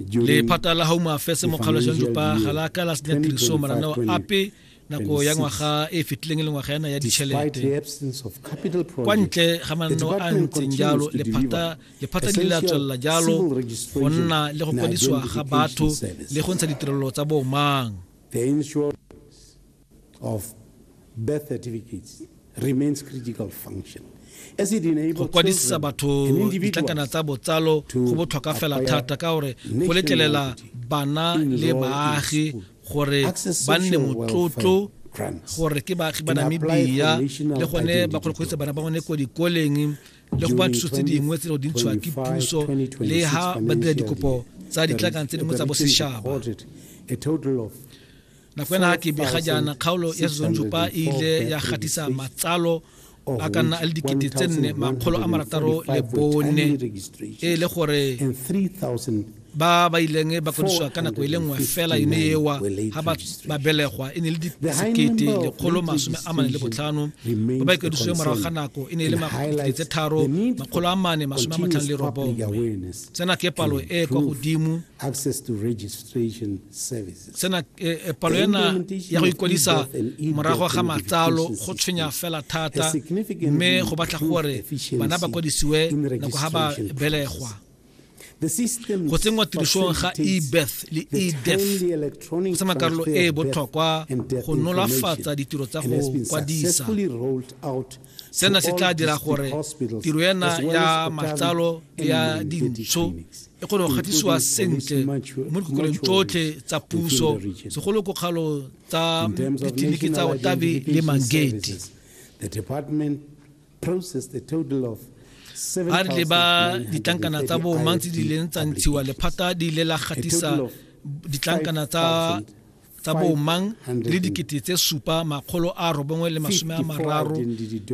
lephata la home affairs mo kgalojang jopa ga la ka la senya tiriso marana wa ape nako ya ngwaga e fetileng e le ngwaga yana ya ditšhelete kwa ntle ga mananeo a ntseng jalo lephata le la tswelela jalo go nna le go kwadisiwa ga batho le go ntsha ditirelo tsa bomang of birth certificates remains critical function go kwadisa batho ditlankana tsa botsalo go botlhokwa fela thata ka gore go letlelela bana le baagi gore ba nne motlotlo gore ke baagi ba namibia le gone ba kgone go bana ba gone ko dikoleng le go ba thuso tse dingwe tse di ntshiwa ke puso le ha ba dira dikopo tsa ditlakanang tse dingwe tsa bosetšhaba nako ena ke bega jaana kgaolo ya sezonjupa e ile ya gatisa matsalo Oh, a ka nna a le dikete tse nne makgolo a marataro le bone e le gore ba ba ileng ba kodisiwa ka nako e le nngwe fela yone ewa ga ba belegwa e ne le disekete lekgolo masome a mane le botlhano ba ba ikwediswe morago ga nako e ne e le makgete tse tharo makgolo a mane masome a matlhano le robongwe tsena ke palo e kwa godimo sena eh, eh, palo ena ya go ikwadisa morago ga matsalo go tshwenya fela thata mme go batla gore bana ba kwadisiwe nako ga ba belegwa go tsenngwa tirisong ga ebeth le edef go tsena karolo e e botlhokwa go nolofatsa ditiro tsa go kwadisa sena se tla dira gore tiro ena ya matlalo ya dintsho e kgone go gatisiwa sentle mo dikokolong tsotlhe tsa puso segolo kokgalo tsa ditleliniki tsa otabe le mangate a re leba ditlankana tsa boomang tse di leng tsa ntshiwa lephata di ile la gatisa ditlankana tsa tsa boomang le dikete tse supa makgolo a robongwe le masome a mararo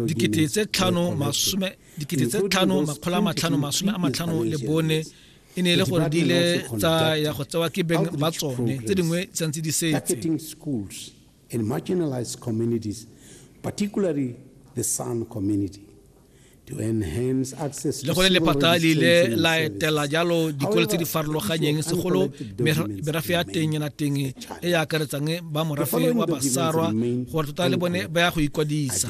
dikete tse tlhano masome dikete tse tlhano makgolo a matlhano masome a matlhano le bone e ne e le gore di ile tsa ya go tsewa ke beng ba tsone tse dingwe tshwanetse di setse in marginalized communities, particularly the San community. le gone lephata le ile la etela jalo dikolo tse di farologanyeng segolo merafe ya teng ena teng e e akaretsang ba morafe wa basarwa gore tota le bone ba ya go ikwadisa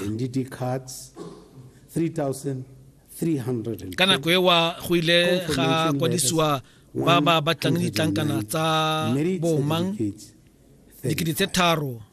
ka nako ewa go ile ga kwadisiwa ba ba batlang ditlankana tsa bomang dikete tse tharo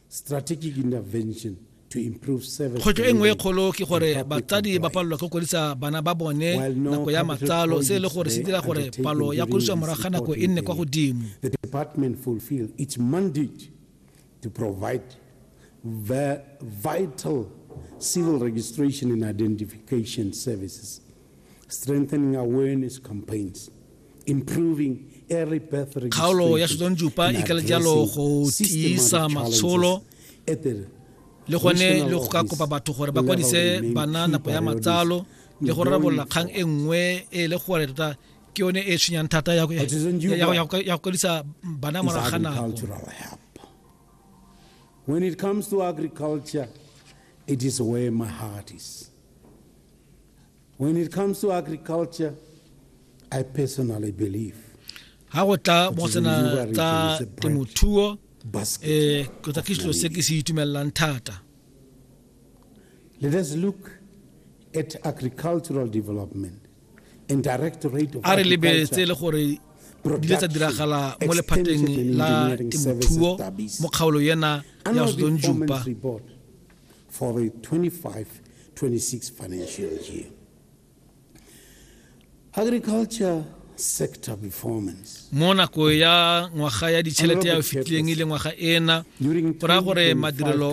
Strategic intervention Kgwetlho e nngwe e kgolo ke gore batsadi ba palelwa ke kwadisa bana ba bone nako ya matsalo se e le gore se dira gore palo ya kwadiswa morago ga nako e nne kwa godimo to provide vital civil registration and identification services, strengthening awareness campaigns. kgaolo ya setsonjupa e kala jalo go tiisa matsholo le gone le go ka kopa batho gore ba kwadise bana nako ya matsalo le go rarabolola kgang e nngwe e le gore tota ke yone e tshwenyang thata ya go kwadisa bana morago ga nako When it comes to agriculture, it is where my heart is. When it comes to agriculture, I personally believe ha go tla mo tsena tsa temothuo eh go tla ke selo se ke se itumellang thata let us look at agricultural development and direct rate of a re lebeletse le gore di le tsa diragala mo lephateng la temothuo mo kgaolo yena ya sdon jupa for the 2025-2026 financial year. Agriculture sector performance. mo nako ya ngwaga ya ditšhelete ya o fetileng e le ngwaga ena go raya gore madirelo